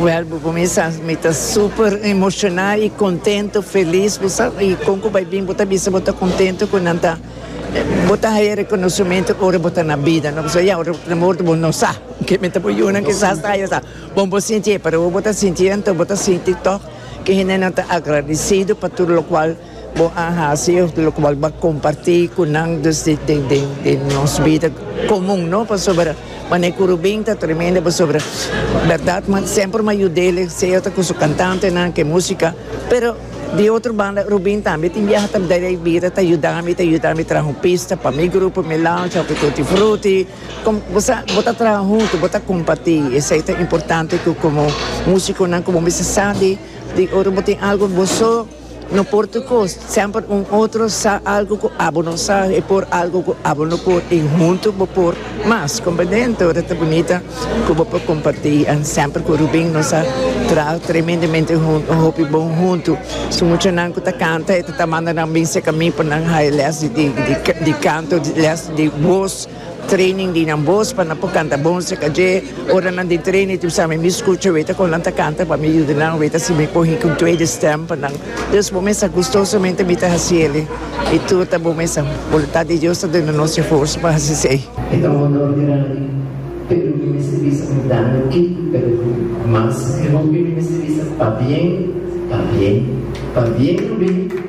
Wel bo cominsá mi ta super emocioná y contento, feliz bo sa y con cu bay bin bo ta bisa bo ta contento cu nan ta bo ta haya reconocimiento ora bo ta na bida no pasobra ya ora bo ta na morto bo no sa ke men ta por yunan kisas ta haya sa bon bo sintié pero ora bo ta sintié enton bo ta sinti tog ke hendenan ta agradecido pa tur locual. Bo a hasi lokual bo a kompartí ku nan dus di nos bida komun, no? Pasobra manera ku Rubin ta tremendo pasobra bèrdat mi semper mi a yud'el sea ta ku su kantantenan ke músika pero di otro banda Rubin tambe tin biaha ta dal e bida ta yuda mi ta yuda mi traha un pista pa mi grupo Melancha òf Tutti Frutti kòm bo sa bo ta traha huntu bo ta kompartí esei ta importante ku komo músikonan ku bo mester sa di ora bo tin algu boso. No por tur cos, semper un otro sa algo cu abo no sa y por algo cu abo no por y hunto bo por mas, compendente? Ora ta bunita cu bo por comparti and semper cu Rubin nos a traha tremendemente hunto, un hopi bon hunto. Su muchanan cu ta canta e ta ta manda nan bin secami pa nan haya les di canto, les di voz. Training di nan bos pa nan por canta bon acerca dje. Ora nan den training tin sa mi mi scucha weta con nan ta canta pa mi yuda nan weta si mi por hint un tweede stem pa nan. Dus bo mester gustosamente mi ta haci eli. I tur ta bo mester. Voluntad di Dios ta duna nos e forsa pa haci esey. E ta un honor grandi, pero mi mester bisa mi dando kiko pero cu mas e hopi mi mester bisa pabien, pabien, pabien lo bini.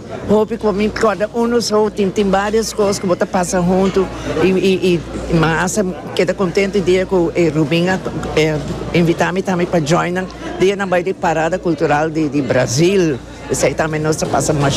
Hopi cu mi corda uno so tin tin varios cos cu bo ta pasa hunto y y y mi hasta keda contento e dia cu e Rubin a invita mi tambe pa join nan dia nan bay di parada cultural di di Brazil esey tambe nos ta pasa.